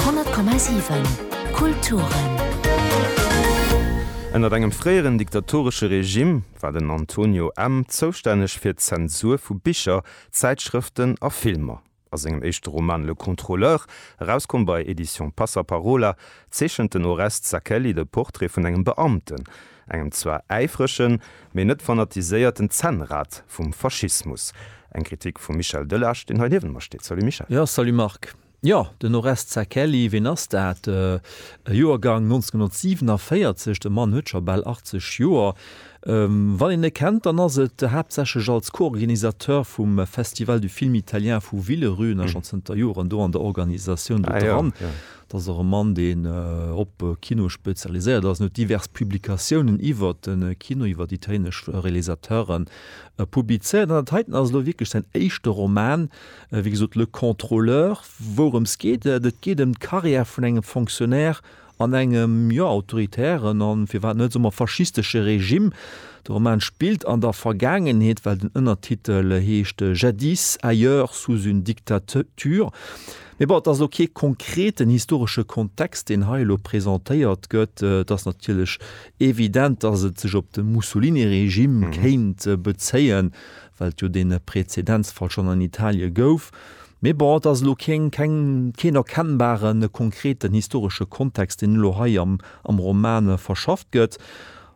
100,7 Kulturen. Ënnert engem fréieren diktatoresche Regime war den Antonio M. zoustänneg fir d'Zensur vu Bicher, Zäitschrëften a Filmer. A sengem éischte Roman Le Contrôleur, erauskomm bei Editions Passaparola, zeechent den Oreste Zacchelli de Portrait vun engem Beamten, Engem zwar äifregen, mee net fanatiséierten Zännrad vum Faschismus. Eng Kritik vum Michel Delage, deen hei niewent mer steet. Salut Michel. Jo, salut Marc. Jo, den Oreste Zacchelli, ween ass dat? E Joergang 1947, de Mann huet scho bal 80 Joer. Wann een e kennt, dann ass et haaptsächlech als Co-Organisateur vum Festival du film italien vu Villerüen, ass schonn zënter Joren do an der Organisatioun do dran. Dat ass och e Mann, deen op Kino spezialiséiert ass. En huet divers Publikatiounen iwwer de Kino, iwwer italienesch Realisateuren publizéiert. An dat heiten ass elo wierklech säin éischte Roman, wéi gesot Le Contrôleur. Wourëms geet et? Et geet ëm d'Carrière vun engem Fonctionnaire an engem, jo, autoritären a firwat net, soe mer, faschistesche Regime. De Roman spillt an der Vergaangenheet, well den Ënnertitel heescht Jadis, ailleurs, sous une dictature. Mee bon, et ass elo kee konkreten historesche Kontext, deen hei elo presentéiert gëtt. Et ass natierlech evident, datt et sech op de Mussolini-Regime kéint bezéien, well et jo dee Prezedenzfall schonn an Italie gouf. Mee bon, et ass elo keen, keng, keen erkennbare konkreten historesche Kontext, deen elo hei am Roman verschafft gëtt.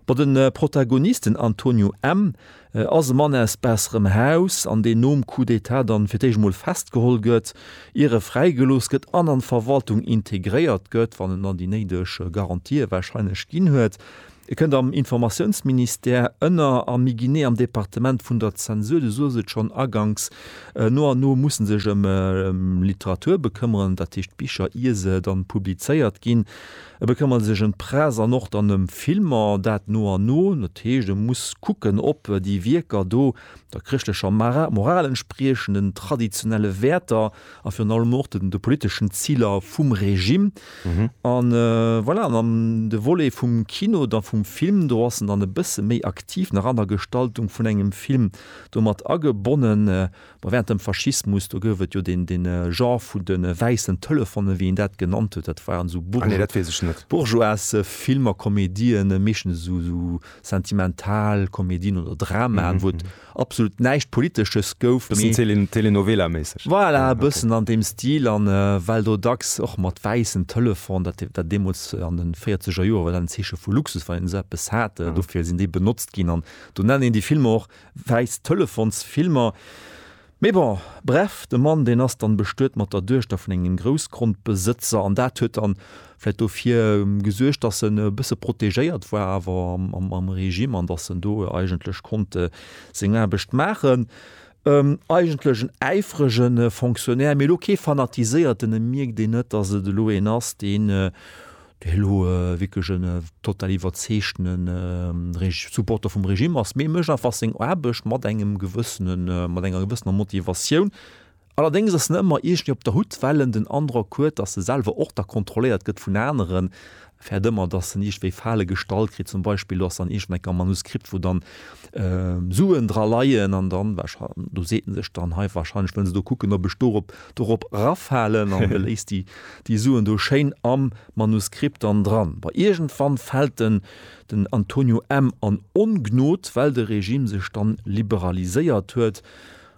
Bon, de Protagonist, den Antonio M. ass e Mann aus besserem Haus an deen nom Coup d'Etat dann fir d'éischt emol festgeholl gëtt, ier e fräigelooss gëtt an an d'Verwaltung integréiert gëtt, wann en dann déi néideg Garantië wahrscheinlech ginn huet. E kënnt am Informatiounsministère ënner a méi genee am Departement vun der Zensur. Du soës et schonn aganks, no an no muss e sech ëm Literatur bekëmmeren, dat heescht Bicher, ier se dann publizéiert ginn. E bekëmmert sech ëm d'Press an och dann ëm Filmer, dat no an no. Dat heescht, e muss kucken, ob déi Wierker do der chrëschtlecher Moral entspriechen, den traditionelle Wäerter a virun allem och de politeschen Ziler vum Regime. An voilà, an an de Volet vum Kino, da vum Film, do ass en dann e bësse méi aktiv nach an der Gestaltung vun engem Film do mat agebonnen. Bon, wärend dem Faschismus, do gouf et jo deen Genre vun de wäissen Telefonen, wéi een dat genannt huet, dat waren esou bourgeoise Filmer, Komedien, meeschtens esou sentimental Komedien oder Dramaen, wou et absolut näischt Politesches gouf, mee. Bëssen Telenovela-méisseg. Voilà, e bëssen an deem Stil, a well do dacks och mat wäissen Telefon, dat war deemools an de Véierzeger Joer, war dat en Zeeche vu Luxus, wann een esou eppes hat, dofir sinn déi benotzt ginn. An do nennen een déi Filmer och Wäiss Telefons Filmer. Mee bon, bref, de Mann deen ass dann bestuet mat der Duechter vun engem Groussgrondbesëtzer an dat huet dann vläit dofir gesuergt dass en e bësse protegéiert war awer am Regime an dass en do eigentlech konnt seng Aarbecht maachen. Eigentlech en äifrege Fonctionnaire mee elo kee fanatiséierten, e mierkt een net dass et elo een ass deen Well hu wierklech en total iwwerzeegtene Supporter vum Regime ass, mee e mécht einfach seng Aarbecht mat engem gewëssene, mat enger gewëssener Motivatioun. Allerdéngs ass en ëmmer iergendwéi op der Hut, well en den Androck huet, datt e selwer och da kontrolléiert gëtt vun aneren, fäert ëmmer, datt en iergendwéi Fale gestallt kritt. Zum Beispill do ass dann iergend enker e Manuskript, wou dann Suen dra leien, an dann do seet en sech dann, Hei, warscheinlech wëllen se do kucken, ob ech dorop Dorop rafalen an de léisst déi Suen do schéin am Manuskript dann dran. Bei iergendwann fält en, den Antonio M. an Ongnod, well de Regime sech dann liberaliséiert huet.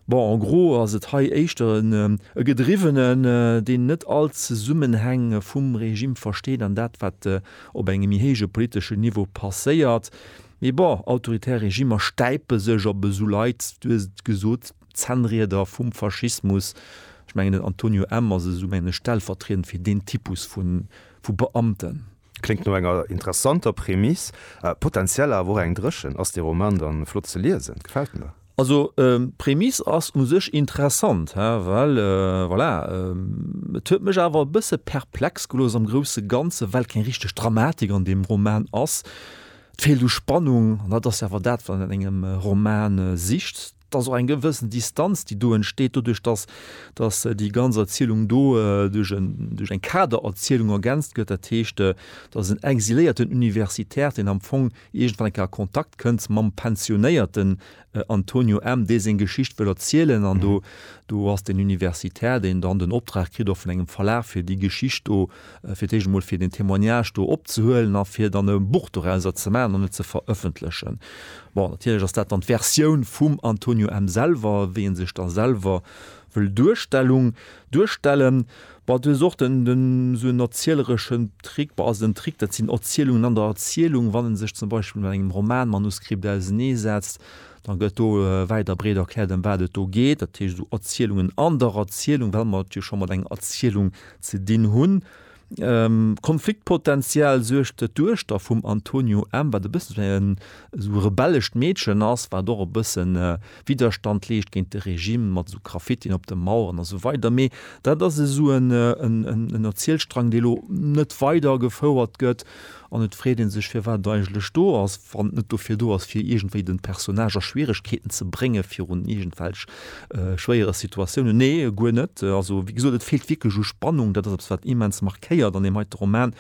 Bon, en gros ass et hei éischter e Gedriwwenen, deen net all d'Zesummenhäng vum Regime versteet an dat, wat op engem méi héije politeschen Niveau passéiert. Mee bon, autoritär Regimer stäipe sech op esou Leit, du hues et gesot, Zännrieder vum Faschismus. Ech mengen den Antonio M. ass esou mengen ech stellvertriedend fir deen Typus vu Beamten. Kléngt no enger interessanter Prämiss, potentiell awer och eng dréchen. Ass dee Roman dann flott ze liesen? Gefält mir. Also d'Prämiss ass u sech interessant, he, well voilà, et huet mech awer e bësse perplex gelooss am grousse Ganzen, well keng richteg Dramatik an deem Roman ass. Et feelt u Spannung, an dat ass jo awer dat wat een an engem Roman sicht. Et ass och eng gewëssen Distanz, déi do entsteet doduerch, dass, dass déi ganz Erzielung do duerch en, duerch eng Kadererzielung ergänzt gëtt. Dat heescht, dass en exiléierten Universitär, deen am Fong iergendwann eng Kéier a Kontakt kënnt mam pensionéierten Antonio M., dee seng Geschicht wëll erzielen. An do, do ass den Universitär, deen dann den Optrag kritt och vun engem Verlag, fir déi Geschicht do, fir d'éischt emol fir deen Témoignage do opzehuelen a fir dann e Buch dorauser ze maachen an et ze verëffentlechen. Bon, natierlech ass dat dann d'Versioun vum Antonio M. selwer, wéi e sech da selwer wëll Duerstellung, duerstellen. Bon, du hues och den, den esou en erzielereschen Trick, bon, also den Trick, dat sinn Erzielungen an der Erzielung. Wann e sech zum Beispill mat engem Romanmanuskript auseneesetzt, da gëtt do wäit a breet erkläert, ëm wat et do geet, dat heescht esou Erzielungen an der Erzielung, well mer et jo scho mat enger Erzielung Ze dinn hunn. Konfliktpotential suergt, datt d'Duechter vum Antonio M. wat e bëssen esou en esou rebellescht Meedchen ass, wat och e bëssen Widderstand leescht géint de Regime, mat esou Graffitien op de Maueren a sou weider. Mee dat ass esou en Erzielstrang, dee lo net weidergefouert gëtt. An et freet ee sech, firwat et eigentlech do ass, wann et net dofir do ass, fir iergendwéi de Personnage a Schwieregkeeten ze brénge virun iergendwelch schwéiere Situatiounen. Nee, guer net. Also, wéi gesot, et feelt wierklech u Spannung. Dat ass eppes, wat immens markéiert an deem heite Roman.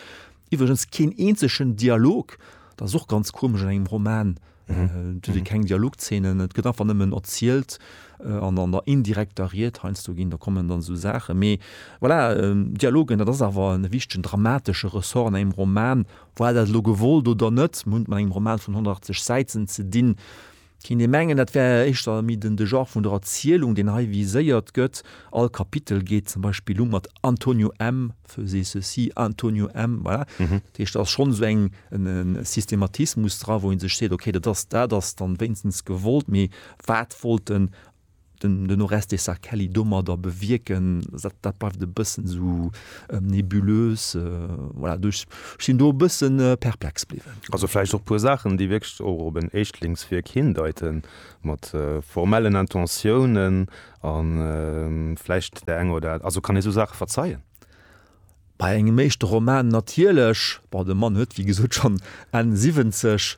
Iwwregens keen eenzegen Dialog. Dat ass och ganz komesch an engem Roman, Et gëtt keng Dialogzeenen, et gëtt einfach nëmmen erzielt an an der indirekter Ried heiansdo ginn da kommen dann esou Saachen. Mee voilà, Dialogen, dat ass awer e wichtegen dramatesche Ressort an engem Roman. War dat elo gewollt oder net, mir hunn et mat engem Roman vun 180 Säiten ze dinn. Kéint ee mengen, dat wär éischter méi den de Genre vun der Erzielung, deen hei viséiert gëtt. All Kapitel geet zum Beispill u mat Antonio M. faisait ceci, Antonio M. Voilà. Mhm. Dat heescht, da ass schonn esou eng en, en Systematismus dra, wou een sech seet, okay, dat ass dat ass dann wéinstens gewollt, mee wat wollt den den den Oreste Sacchelli domadder bewierken? Dat dat bleift e bëssen esou ähm, nebulös. Äh, voilà, do ech ech sinn do e bëssen äh, perplex bliwwen. Also vläicht och puer Saachen, déi wierklech och op en Éischtlingswierk hindeiten, mat äh, formellen Intentiounen, A vläicht där enger oder. Also kann ee sou Saache verzeien? Bei engem éischte Roman natierlech. Bon, de Mann huet wéi gesot schonn Enn siwwenzeg.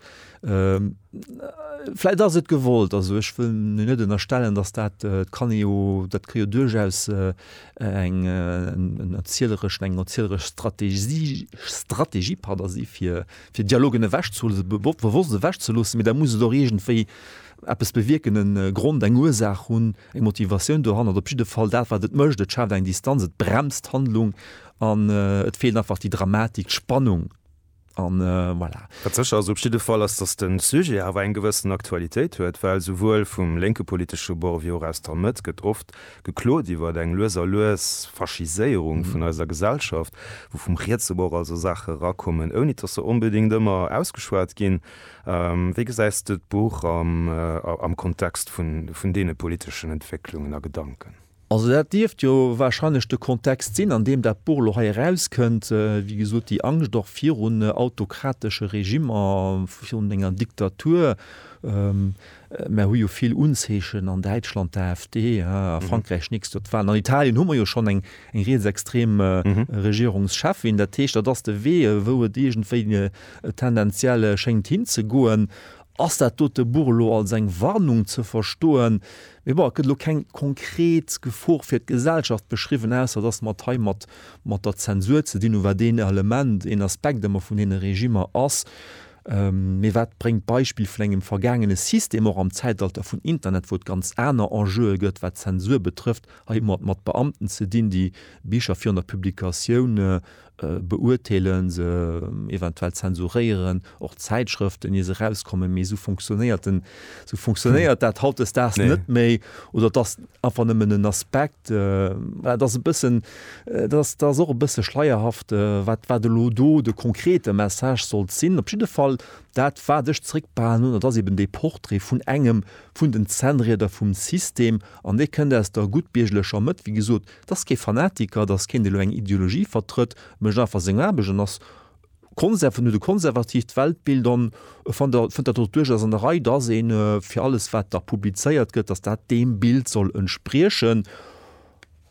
Vläicht ass et gewollt. Also ech wëll him net ënnerstellen, datt dat, dat kann ee jo, dat ka jo duerchaus eng erzieleresch, eng erzieleresch Strategie, Strategie, pardon, si fir Dialogen ewechzelo, bewosst ewechzeloossen, mee da muss et och iergendwéi Eppes bewierken, e Grond, eng Ursaach hunn, eng Motivatioun dohannert, op jidde Fall dat, wat et mécht, et schaaft eng Distanz, et bremst d'Handlung an et feelt einfach déi Dramatik, d'Spannung an voilà. Wat sécher ass op jidde Fall, ass, datt de Sujet awer eng gewëssen Aktualitéit huet, well souwuel vum lénke politesche Bord wéi och aus der Mëtt gëtt oft geklot iwwer eng lues a lues Faschiséierung vun eiser Gesellschaft, wou vum rietse Bord also Saache erakommen, ouni datt se onbedéngt ëmmer ausgeschwat ginn. Wéi gesäis de d'Buch am Kontext vun deene politeschen Entwécklungen a Gedanken? Also dat dierft jo warscheinlech de Kontext sinn, an deem dat Buch elo hei erauskënnt. Wéi gesot, déi Angscht och virun autokratesche Regimmer, virun enger Diktatur. Mer hu jo vill Unzeechen, an Däitschland d'AfD, a Frankräich nächst Joer d'Walen, an Italien hu mer jo schonn eng rietsextrem Regierungscheffin. Dat heescht, dat ass de Wee, wou et iergendwéi tendenziell schéngt hinzegoen. Ass dat dote Buch elo als eng Warnung ze verstoen? Mee bon, et gëtt elo keng konkret Gefor fir d'Gesellschaft beschriwwen, ausser dass mer et hei mat der Zensur ze dinn hunn, wat een Element, een Aspekt ëmmer vun deene Regimmer ass. Mee wat bréngt d'Beispill vun engem vergaangene System, och am Zäitalter vun Internet, wou et ganz aner Enjeue gëtt, wat d'Zensur betrëfft? Hei hu mer et mat Beamten ze dinn, déi Bicher virun der Publikatioun beurteelen, se eventuell zensuréieren, och Zäitschrëften, ier se erauskommen. Mee esou fonctionéiert den Sou funktionéiert dat hautdesdaags Nee. net méi oder et ass einfach nëmmen en Aspekt. äh, Voilà, dat ass e bëssen, äh, dat ass, dat ass och e bësse schleierhaft, äh, wat, wat elo do de konkrete Message sollt sinn. Op jidde Fall, dat wat ech zréckbehalen hunn, dat ass eben dee Portrait vun engem vun den Zännrieder vum System an dee kënnt aus der guttbiergerlecher Mëtt. Wéi gesot, dat ass kee Fanatiker, dat ass keen, dee elo eng Ideologie vertrëtt, mécht einfach seng Aarbecht an ass Konserven oder konservatiivt Weltbild an e fannt der fënnt dat och duerchaus an der Rei, dass ee fir alles wat da publizéiert gëtt, dass dat deem Bild soll entspriechen.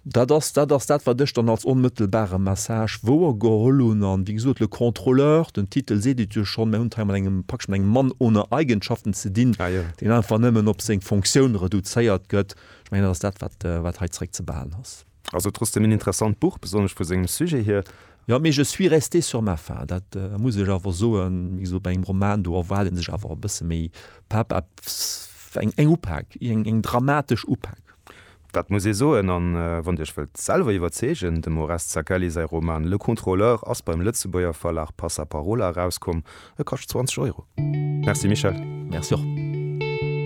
Dat ass dat ass dat wat ech dann als onmëttelbare Message wouer geholl hunn. An wéi gesot, le contrôleur, den Titel seet et jo schonn, mir hunn et hei mat engem praktesch mat engem Mann ohne Eigenschaften ze dinn, deen einfach nëmmen op seng Fonctioun reduzéiert gëtt. Ech mengen dat ass dat wat wat hei zréckzebehalen ass. Also trotzdem een interessant Buch, besonnesch vu sengem Sujet hier. Jo, mee je suis resté sur ma faim, dat muss ech awer soen, wéi gesot, bei engem Roman, do erwaart ee sech awer e bësse méi Pepp, eppes, eng, eng Upak, eng, eng dramatesch Upak. Dat muss ee soen. A wann Dir Iech wëllt selwer iwwerzeegen, dem Oreste Zacchelli säi Roman Le Contrôleur ass beim Lëtzebuerger Verlag Passaparola erauskomm, e kascht 20 Euro. Merci Michel. Merci och.